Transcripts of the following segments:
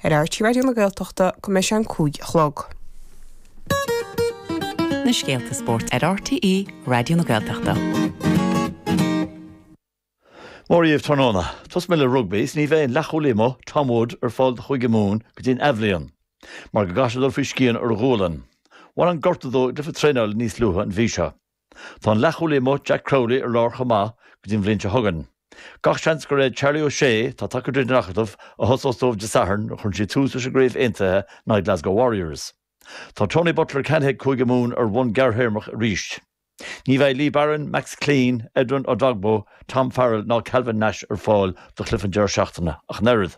ar RTÉ Raidió na Gaeltachta go mbeidh sé a cúig a chlog. na scéalta spóirt ar RTÉ Raidió na Gaeltachta. Mora dhaoibh tráthnóna. Tosóidh mé le rugbaí is ní bheidh an leathchúlaí amuigh, Tom Wood, ar fáil do Chúige Mumhan go dtí an athbhliain mar go gcaithfidh sé dul faoi scian ar a ghualainn. Bhain an gortú dó i gcluiche traenála níos luaithe an mhí seo. Tá an leathchúlaí amuigh Jack Crowley ar lár chomh maith go dtí an bhliain seo chugainn. Gach seans gur é Charlie O'Shea, atá tagtha tríd an Acadamh, a thosós dóibh Dé Sathairn nuair a chuireann siad tús leis an gCraobh Aontaithe in aghaidh Glasgow Warriors. Tá Tony Butler ceannaithe ag Cúige Mumhan ar bhonn gearrthéarmach arís. Ní bheidh Lee Barron, Max Clein, Edwin Edogbo, Tom Farrell ná Calvin Nash ar fáil do Cliff an deireadh seachtaine ach an oiread.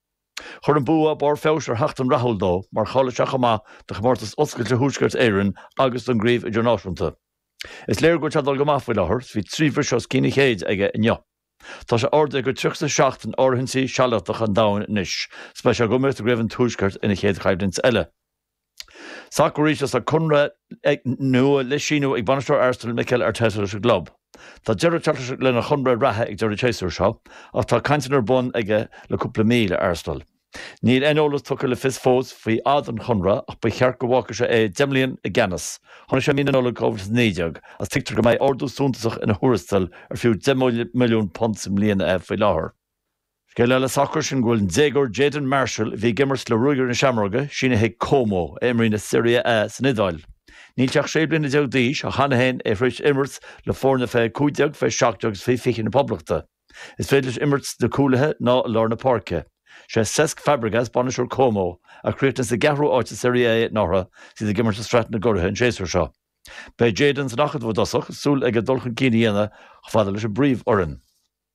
Chuir an bua barr feabhais ar sheachtain rathúil dó mar cháiligh sé chomh maith do Chomórtas Oscailte Thuaisceart Éireann agus don gCraobh Idirnáisiúnta. Is léir go dtaitníonn dul go maith faoi láthair is bhí trí bhriseadh os cionn an chéid aige inniu. Tá sé ardaithe go 37 in áitíochtaí sealadacha an domhain anois is beidh sé ag imirt i gCraobh an Tuaiscirt ina chéad choimhlint eile. Sacar arís agus tá conradh nua le síniú ag bainisteoir Arsenal Mikel Arteta leis an gclub. Tá deireadh ag teacht lena chonradh reatha ag deireadh an tséasúir seo ach tá cainteanna ar bun aige le cúpla mí le Arsenal. Níl aon eolas tugtha le fios fós faoi fhad an chonartha ach ba cheart go bhfágfadh sé é deich mbliana i gceannas. Tháinig sé i mí na Nollag 2019 agus tuigtear go mbeidh ardú suntasach ina thuarastal ar fiú £10 milliún sa mbliain é faoi láthair. Scéal eile sacair sin go bhfuil an déagóir Jayden Marshall, a bhí ag imirt le Ruagairí na Seamróige, sínithe ag Como, a imríonn i Serie A san Iodáil. Níl sé ach sé bliana déag d'aois ach cheana féin tá sé tar éis imirt le foirne fé 15, fé 17 agus fé 20 na Poblachta. Is féidir leis imirt sna cúlaithe ná i lár na páirce. Sé Cesc Fabregas, bainisteoir Como, a chríochnaigh sa gceathrú áit i Serie A anuraidh agus iad ag imirt i Sraith na gCuraithe an séasúr seo. Beidh Jayden san acadamh i dtosach agus súil aige dul chun cinn a dhéanamh chomh fada leis an bpríomhfhoireann.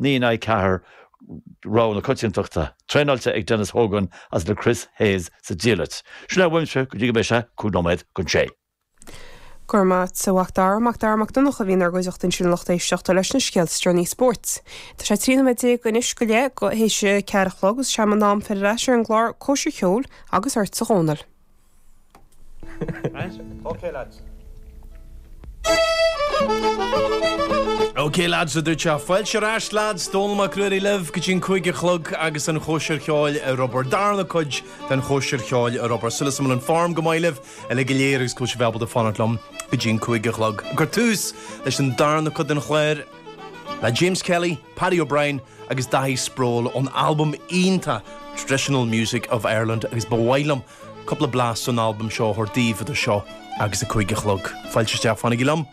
Naoi in aghaidh ceathair rogha na coitiantachta, traenáilte ag Denis Hogan agus le Chris Hayes sa diallait. Sin é uaimse go dtí go mbeidh sé cúig nóiméad chun a sé. Go raibh maith agat, a Mhacdara. Macdara Mac Donncha a bhí inár gcuideachta ansin a lucht éisteachta leis na scéalta is deireanaí spóirt. Tá sé trí nóiméad déag anois go leith tar éis a ceathair a chlog agus is é m'anam fáilte ar ais ar an gclár Cóisir Cheoil agus ortsa a Dhónaill. OK lads a dúirt sé. Fáilte ar ais lads, Dónal Mac Ruairí libh go dtí an cúig a chlog agus an chóisir cheoil ar obair. Darna cuid den chóisir cheoil ar obair. Súil agam go bhfuil an form go maith libh uilig go léir agus go bhfuil sibh ábalta fanacht liom go dtí an cúig a chlog. Ag cur tús leis an darna cuid den chlár. le James Kelly, Paddy O'Brien agus Daithí Sproule ón albam iontach Traditional Music of Ireland agus ba mhaith liom cúpla blas ón albam seo a thabhairt daoibh idir seo agus a cúig a chlog. Fáilte isteach, fanaigí liom!